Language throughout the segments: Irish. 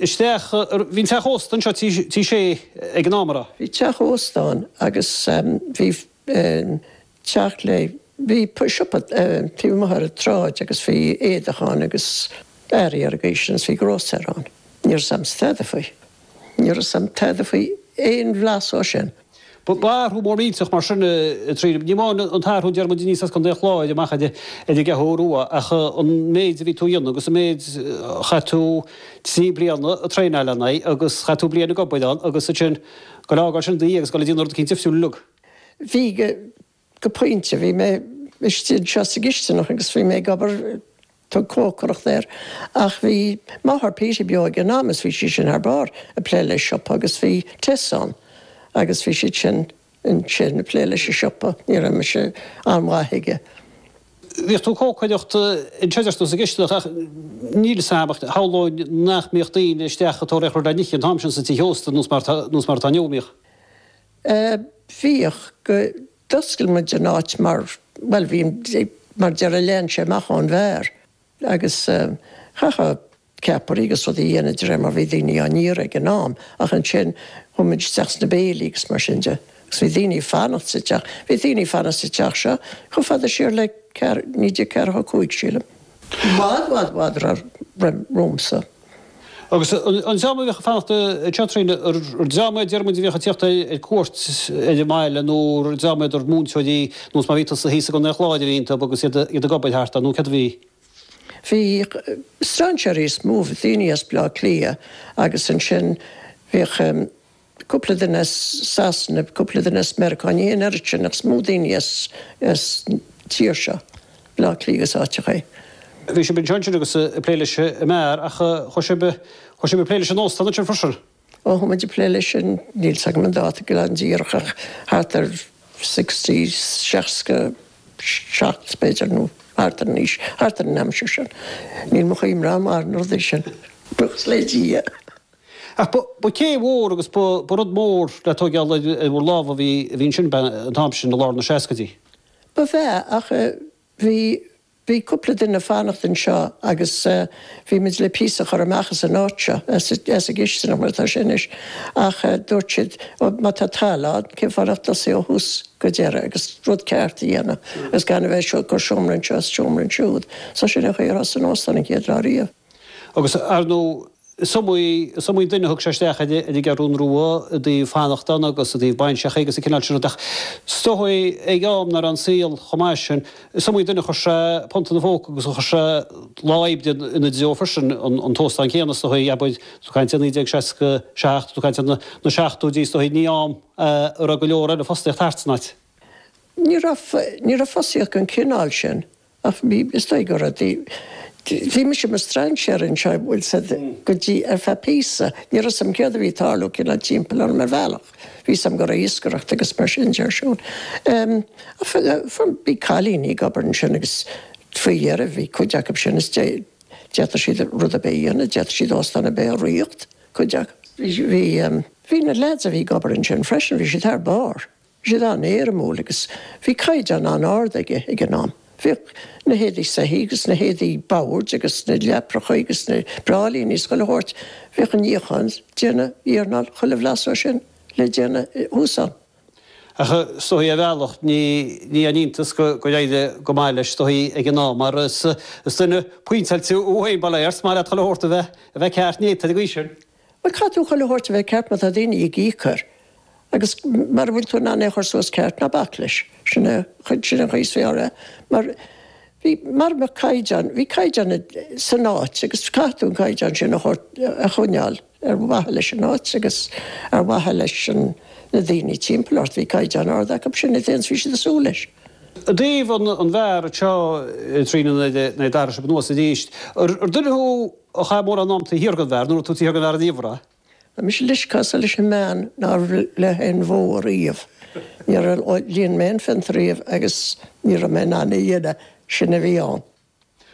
isteach. Bhí an teach ósta anseo, Tí Shé, ag an am, ar a. Bhí teach ósta ann agus bhí teach le, bhí siopa taobh amuigh ar an tsráid agus bhí éadach ann agus earraí ar an gcaoi sin agus bhí grósaera ann. Ní raibh 'fhios a'm tada faoi. Ní raibh 'fhios a'm tada faoi aon bhlas ó sin. Ba athrú mór millteach mar sin é a Doreen. Ní amháin an t-athrú a deir muid aníos as Co. an Chláir amach ar an gCeathrú Rua ach an méid a bhí tú a dhéanamh agus an méid, chaith tú trí bliana ag traenáil lena aghaidh agus chaith tú bliain ag obair ann agus ansin ag fágáil sin i do dhiaidh agus ag dul ag déanamh rud éicint difriúil uilig. Bhí go pointe. Bhí mé istigh anseo sa gcistineach agus bhí mé ag obair, tug cócaireacht air, ach bhí máthair Peaty beo ag an am is bhí sí sin thar barr ag plé le siopa agus bhí Tess ann agus bhí siad sin ansin ag plé leis an siopa. Ní raibh mise an-mhaith aige. Bhíodh tú ag cócaireacht anseo deir tú sa gcistineach ach níl 'fhios a'm ach shamhlóinn nach mbíodh daoine isteach ag tóraíocht aon rud le n-ithe an t-am sin sa teach ósta nós mar atá inniu, an mbíodh? Eh, bhíodh, go, d'oscail muid an áit mar, bhuel bhí, mar déarfá lean sé amach ón mbeár agus eh, chaithfeá ceapairí agus rudaí a dhéanamh de réir mar bhí daoine á n-iarraidh ag an am ach ansin chuaigh muid isteach sna béilí agus mar sin de agus bhí daoine ag fanacht sa teach, bhí daoine ag fanacht sa teach seo chomh fada siar le ceathr, 1945 sílim, i bhfad, bhfad, bhfad roimh, roimh, romhamsa. Agus an dream a bhíodh ag fanacht anseo Doreen, an dream iad a deir muid a bhíodh ag tíocht ar cuairt ar an mbaile nó an dream iad, múinteoirí nós mar bhí tusa thíos i gContae an Chláir a bhí iontub agus iad ag obair thart ann nó céard a bhí? Bhí strainséirí is mó, daoine as Baile Átha Cliath agus ansin bhíodh. cúpla duine as Sasana, cúpla duine as Meiriceá, ní hé an oiread sin ach is mó daoine as an tír seo, Baile Átha Cliath agus áiteachaí. Bhí sibh anseo ansin agus ag plé leis an mbeár ach chuaigh sibh ag plé leis an óstán ansin freisin. Ó chuaigh muid ag plé leis sin, níl 's agam an dáta go díreach ach thart ar sixty, seasca seacht b'fhéidir nó thart ar an aois, thart ar an aimsir sin. Níl mórán cuimhne agam ar na rudaí sin, buíochas le Dia. Ach ba céim mhór agus ba rud mór le tóigeáil ar bhur lámha a bhí ansin an t-am sin i lár na seascaidí. Ba ea ach bhí, bhí cúpla duine ag fanacht anseo agus bhí muid le píosa a chur amach as an áit seo, as an gcistineach mar atá sé anois. Ach dúirt siad ó má tá talamh ann cén fáth nach dtosaí ó thús go deireadh agus rud ceart a dhéanamh agus gan a bheith ag cur seomra anseo is seomra ansiúd. So sin an chaoi ar thosaigh an t-óstán an chéad lá riamh. Agus, ar ndóigh, is iomaí is iomaí duine a thug sé isteach ar an gCeathrún Rua i dtaobh fanacht ann agus i dtaobh bainseacha agus an cineál sin rud ach is dócha ag am nach raibh an saol chomh maith sin, is iomaí duine a chuir sé punt ina phóca agus a chuir sé lá oibre ina dtreo freisin, an t-óstán céanna is dócha, abair, tú ag caint ar 1967, tú ag caint ar na seachtóidí is dócha, ní am a raibh go leor eile fostaíocht thart san áit. Ní raibh, ní raibh fostaíocht den chineál sin Ach is dóigh go raibh. Bhí mise i mo strainséar anseo an bhfuil a fhios agat go dtí ar feadh píosa. Ní raibh a fhios agam céard a bhí ag tarlú cineál timpeall orm ar bhealach. Bhí a fhios agam go raibh iascaireacht agus mar sin de ar siúl. Bhí cailíní ag obair ansin agus faoi dheireadh bhí cuid acu sin is d'fhéadfadh siad rud ar bith a dhéanamh, d'fhéadfadh siad óstán ar bith a rith, cuid acu. Bhí na lads a bhí ag obair ansin freisin, bhí siad thar barr. Bhí siad an-éirimiúil agus bhí caighdeán an-ard acu ag an am. Bhíodh na héadaí soithí agus na héadaí boird agus na leapachaí agus na bráillíní is chuile shórt, bhíodh an níochán, déanamh, iarnáil, chuile bhlas dó sin le déanamh thuas ann. Ach is dócha ar bhealach, ní aon iontas gur éirigh go maith leis is dócha ag an am mar is duine pointeáilte thú féin, ba léir, is maith leat chuile shórt a bheith ceart néata ag an aois sin. Bhuel, caithfidh tú chuile shórt a bheith ceart má tá daoine ag íoc air agus mara bhfuil tú in ann é a chur suas ceart, ná bac leis. Sin é an chaoi is fearr é. Mar bhí, mara mbeadh caighdeán, bhí caighdeán san áit agus caithfidh tú an caighdeán sin a thabhairt, a choinneáil ar mhaithe leis an áit agus ar mhaithe leis na daoine timpeall ort. Bhí caighdeán ard acu sin, is é a bhí siad ag súil leis. I dtaobh an bheáir seo i dtrí nó naoi staighre anuas arís, ar duine thú a chaith mórán am taobh thiar den bheár, nó raibh tú taobh thiar den bheár in aon chor? Tá mise leisceása leis an mbean nár bhligh aon bhó ariamh. Níor líon mé aon phionta ariamh agus ní raibh mé in ann í a dhéanamh, sin a bhí ann.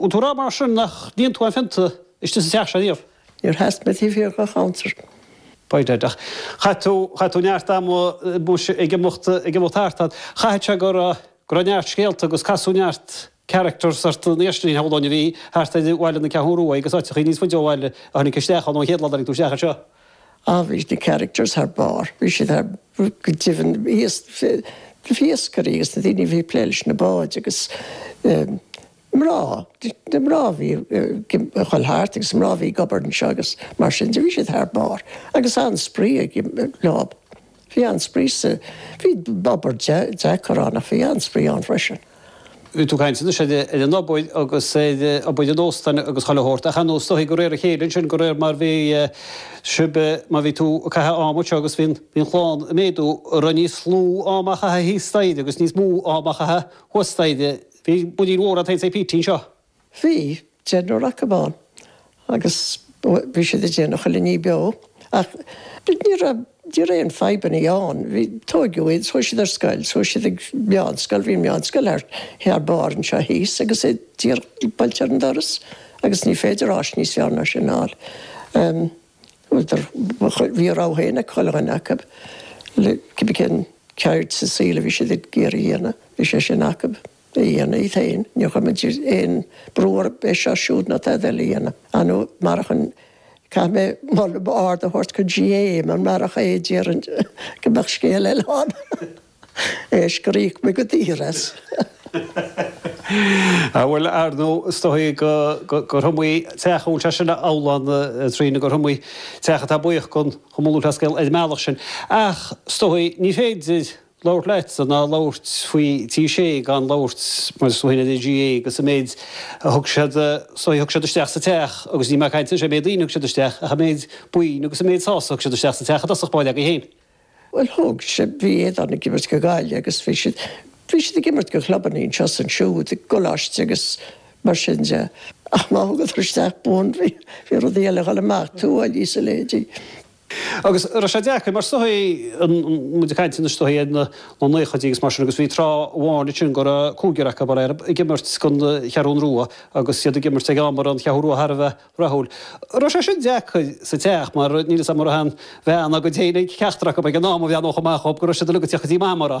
An bhfuil tú ag rá mar sin nach níonn tú an phionta istigh sa teach seo riamh? Níor sheas mé taobh thiar den chuntar. B'fhéidir. Ach chaith tú, chaith tú neart ama muise ag imeacht, ag imeacht thart fad. Chaithfeadh sé go raibh, go raibh neart scéalta agus casadh neart characters ort níos iardheireanaí shamhlóinn a bhí thart ar Bhaile na Ceathrún Ruaidh agus áiteachaí níos faide ó bhaile a tháinig isteach ann ón chéad lá a tháinig tú isteach anseo. Ach bhí na characters thar barr, bhí siad thar, go deimhin bhí, na hiascairí agus na daoine a bhí ag plé leis na báid agus mná, na mná a bhí ag dhul thart agus mná a bhí ag obair anseo agus mar sin de, bhí siad thar barr agus an-spraoi ag baint leo. Bhí an-spraoi ann. Bhí obair deacair ann ach bhí an-spraoi ann freisin. Bhí tú ag caint anois ar an obair agus ar obair an óstáin agus chuile shórt ach ar nós is dócha de réir a chéile ansin de réir mar bhí sibh mar bhí tú ag caitheamh am anseo agus bhí an chlann ag méadú a raibh níos lú ama a chaitheamh thíos staighre agus níos mó ama a chaitheamh thuas staighre. Bhí muirín mhór agat féin is Peterín seo. Bhí, deichniúr acu ann, agus bhí siad ag déanamh chuile ní beo, ach ní raibh, ní raibh aon fadhbannaí ann. Bhí, tóigeadh iad, chuaigh siad ar scoil, chuaigh siad ag meánscoil, bhí meánscoil thar barr anseo thíos agus é díreach buailte ar an doras agus ní féidir áis níos fearr ná sin a fháil. Bhuadar, bhí a rogha féin ag chuile dhuine acu, le, cibé cén ceird sa saol a bhí siad ag iarraidh a dhéanamh, bhí sé sin acu. a dhéanamh iad féin. Níor chuir muid aon brú orthu é seo siúd nó tada eile a dhéanamh. Ah no, marach an, caithfidh mé moladh ard a thabhairt gon GAA mar marach é déarfainn go mbeadh scéal eile ann. Cé is gur íoc muid go daor as. Ah bhuel, ar ndú, is dóigh gur iomaí teach, an bhfuil sé sin amhlaidh a Tríona, gur iomaí teach atá buíoch den Chumann Lúthchleas Gael ar an mbealach sin. Ach, is dóigh, ní féidir. labhairt leatsa ná labhairt faoi Tigh Sé gan labhairt mar is duine de GAA agus an méid a thug siad so thug siad isteach sa Teach agus níl mé ag caint anois ar an méid daoine a thug siad isteach ach an méid boinn agus an méid sásamh a thug siad isteach sa Teach i dtosach báire againn féin. Bhuel thug siad, bhí Aodhán ag imirt go Gaillimh agus bhí siad, bhí siad ag imirt go chlubanna anseo is ansiúd i gcoláiste agus mar sin de ach má thugadar isteach boinn bhí rudaí eile ag dhul amach, tuáillí is a leithéidí. Agus raibh sé deacair mar is dóigh tá muid ag caint anois is dóigh ar na naochaidí agus mar sin agus bhí tráth amháin ansin go raibh cúigear acu mar airm ag imirt gon Cheathrún Rua agus iad ag imirt ag am a raibh an Cheathrú Rua thar a bheith rathúil. Raibh sé sin deacair sa teach mar níl fhios a'm an raibh aon bhean dá gcuid féin ag ceachtar acu ag an am a bhean ó chomh maith chugam go raibh siad uilig ag teacht go dtí Mama a rá.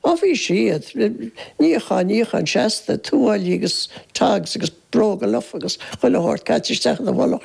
Á bhí siad. Níochán, níochán seasta, tuáillí agus togs agus bróga lofa agus chuile shórt caite isteach ina mhullach.